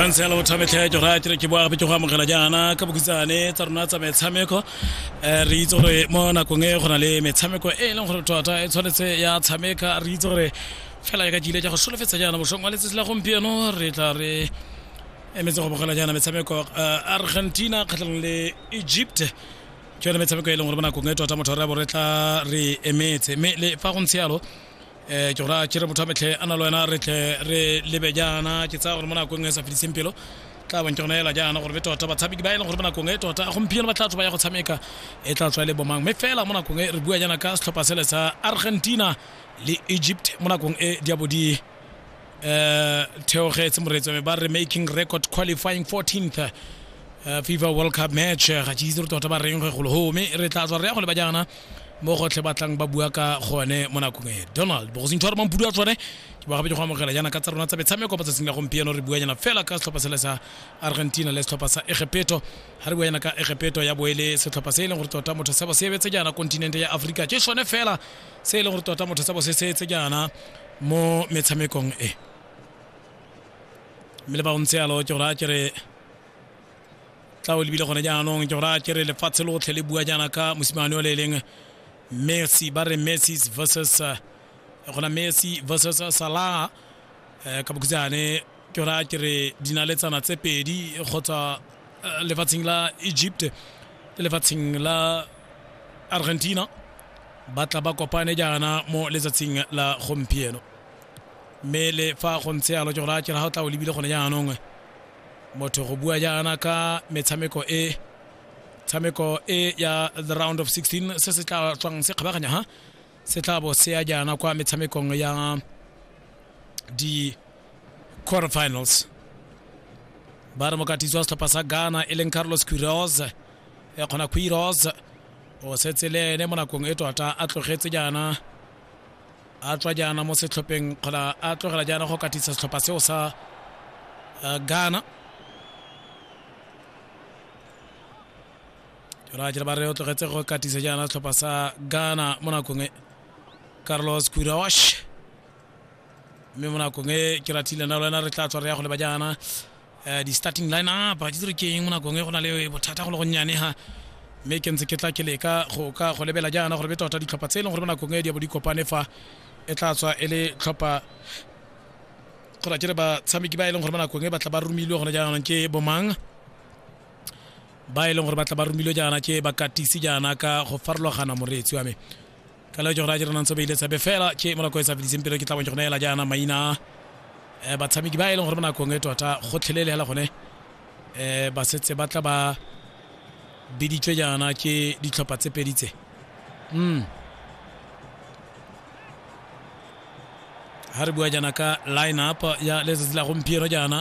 tshwantshe la bothametlha ya jora ke re ke boagape ke go amogela jaana ka bokhutshane tsa rona tsa metshameko um re itse gore mo nakong e go na le metshameko e e leng gore tota e tshwanetse ya tshameka re itse gore fela e ka jile ja go solofetsa jaana mosong wa letsatsi la gompieno re tla re emetse go bogela jaana metshameko uh, argentina kgatlhanong le egypt ke yone metshameko e leng gore bonakong e tota motho re bo re tla re emetse mme le fa go ntse yalo um ke gora kere motho a metlhe a na le wena re tle re lebe jaana ke tsaya gore mo nakong e sa fediseng pelo tla bong ke gona ela jaana gore be tota batshameki ba e leng gore bonakong e tota gompieno ba tla tswa ba ya go tshameka e tla tswa e le bomang mme fela mo nakong e re bua jaana ka setlhopha sele sa argentina le egypt mo nakong e diabo di eh theogetse moreetsi wa me ba re making record qualifying 14th eh, fifa world cup match eh, ga ke itse re tota ba reng ge golo home re tla tswa re ya go le ba jaana mo gotlhe ba tlang ba bua ka gone mo nakong e donald bogosintho a re mampudu a tsone ke ba gabedi go amogela jaana ka tsa rona tsa metshameko ba tsatsing la gompieno re buanyana fela ka setlhopha sele sa argentina le setlhopha sa egepeto ga re buanyana ka egepeto ya boele setlhopha se e leng gore tota motho sebo se ebetse jaana kontinente ya aforika ke sone fela se e leng gore tota motho sebo se se etse jaana mo metshamekong e mme le ba ntse yalo ke gore a kere tla o lebile gone jaanong ke gore a kere lefatshe lotlhe le bua jaana ka mosimane o le e leng messi ba re messi versus eh, gona messi versus salah eh, ka bokhutshane ke raya ke re dinaletsana tse pedi kgotsa eh, lefatsheng la egypt le lefatsheng la argentina ba tla ba kopane jaana mo letsatsing la gompieno mme le fa go ntshe yalo ke go raya ke re ga o tla o lebile gone jaanong motho go bua jaana ka metshameko e tshameko e ya the round of 16 se se tla tswang se kgabaganya ha se tla bo se ya jaana kwa metshamekong ya di quarterfinals ba re mokatisi wa setlhopha sa ghana e leng carlos quiros e kgona quiros o setse le ene mo nakong e tota a tlogetse jaana a tswa jaana mo setlhopheng kgona a tlogela jaana go katisa setlhopha seo sa uh, ghana jora ba re o tlogetse go katisa jaana setlhopha sa ghana mo nakong e carlos quirosh mme mo nakong e ke rathile na lwena re tla tswa re ya go leba jaana um di-starting line up ke tsere keng mo nakong e go na le bothata go le gonnyane ha mme ke ntse ke tla ke leka go ka go lebela jaana gore be tota ditlhopha tse e leng gore mo nakong e di bo di kopane fa e tla tswa e le tlhopha go ra ke re batshameki ba e leng gore mo nakong e batla ba romilwe gone jaanong ke bomang ba e leng gore ba tla ba romilwe jaana ke bakatisi jaana ka go farologana moreetsi wa me ka leo jona jera nantse ba ile tsebe fela ke morako e sa fediseng pele ke tla bonjona ela jaana maina eh, batshameki ba e leng gore mo nakong e tota gotlhelele hela gone eh ba setse ba tla ba biditswe jaana ke ditlhopha tse pedi tse mm ha re bua jaana ka line up ya letsatsi la gompieno jaana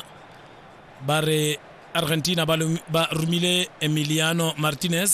ba re argentina ba, ba romile emiliano martinez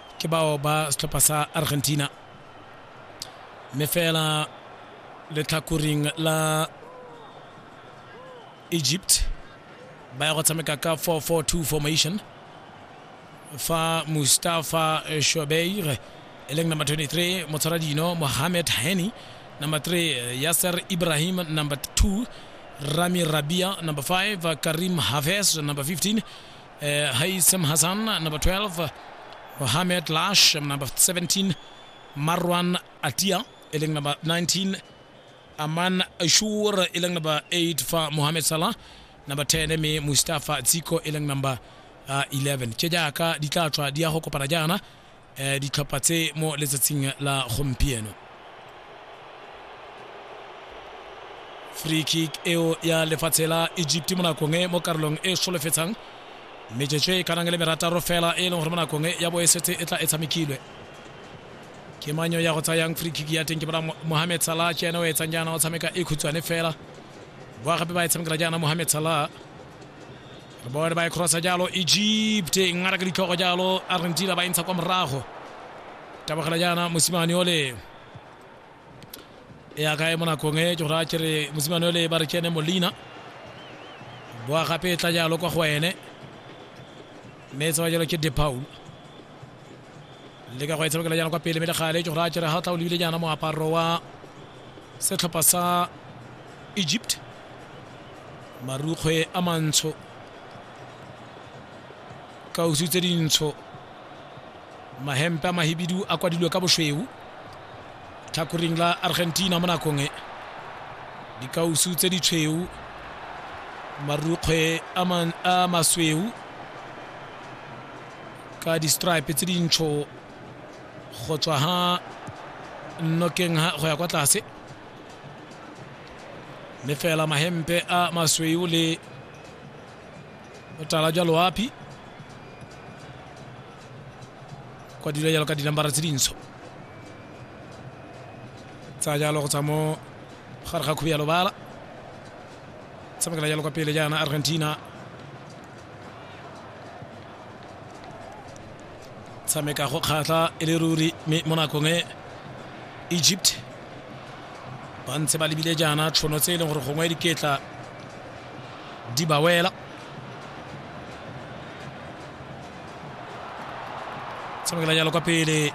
ke bao ba setlhopha sa argentina mme fela letlhakoring la egypt ba ya go tshameka ka 442 formation fa mustafa shobeir e leng number 23 motshwara dino mohamed heni number 3 yasser ibrahim number 2 rami rabia number 5 karim haves number 15 uh, haisem hassan number 12 mohamed lash number 17 marwan atia e leng number 19 aman ashur e leng number 8 fa mohamed salah number 10 me mustafa tsiko e leng number uh, 11 tše jaaka di tla tswa di ya go kopana jaana eh, ditlhopha tse mo letsatsing la gompieno free kick eo ya lefatshe la egypt mo nakong e mo karolong e solofetsang metsotso e kanang le merataro fela e leng gore mo nakong e ya bo e setse e tla e tshamekilwe ke manyo ya go tsayang free kick ya teng ke bona mohamed salah ke ene o etsang jaana o tshameka e khutshwane fela boa gape ba e tshamekela jaana mohamed salah bone ba e crossa jalo egypt e ngata ka ditlhogo jalo argentina ba e ntsha kwa morago tabogela jaana mosimane ole e akae mo nakong e ke gore a kere mosimane ole ba re ke ene molina boa gape e tla jalo kwa go ene mme e tsewa jalo ke depaul le ka go e tshamekela jaana kwa pele mme le gale ke go raya kere ga tla o lebile jaana moaparo wa setlhopha sa egypt marukgwe a mantsho kausu tse dintsho mahempe a mahibidu a kwadilwe ka bošweu tlhakoring la argentina mo nakong e dikausu tse di tshweu marukgwe a masweu ka di-stripe tse dintsho go tswa ha nnokeng ha go ya kwa tlase mme fela mahempe a masweu le botala jwa loapi kwa dilo jalo ka dinambara tse dintsho tsa jalo go tswa mo gare ga khubi ya lobala tshamekela jalo kwa pele jaana argentina tshameka go kgatlha e le ruri mme mo nakong e egypt ba ntse ba lebile jaana tshono tse e leng gore gongwe diketla di ba wela tshamekela jalo kwa pele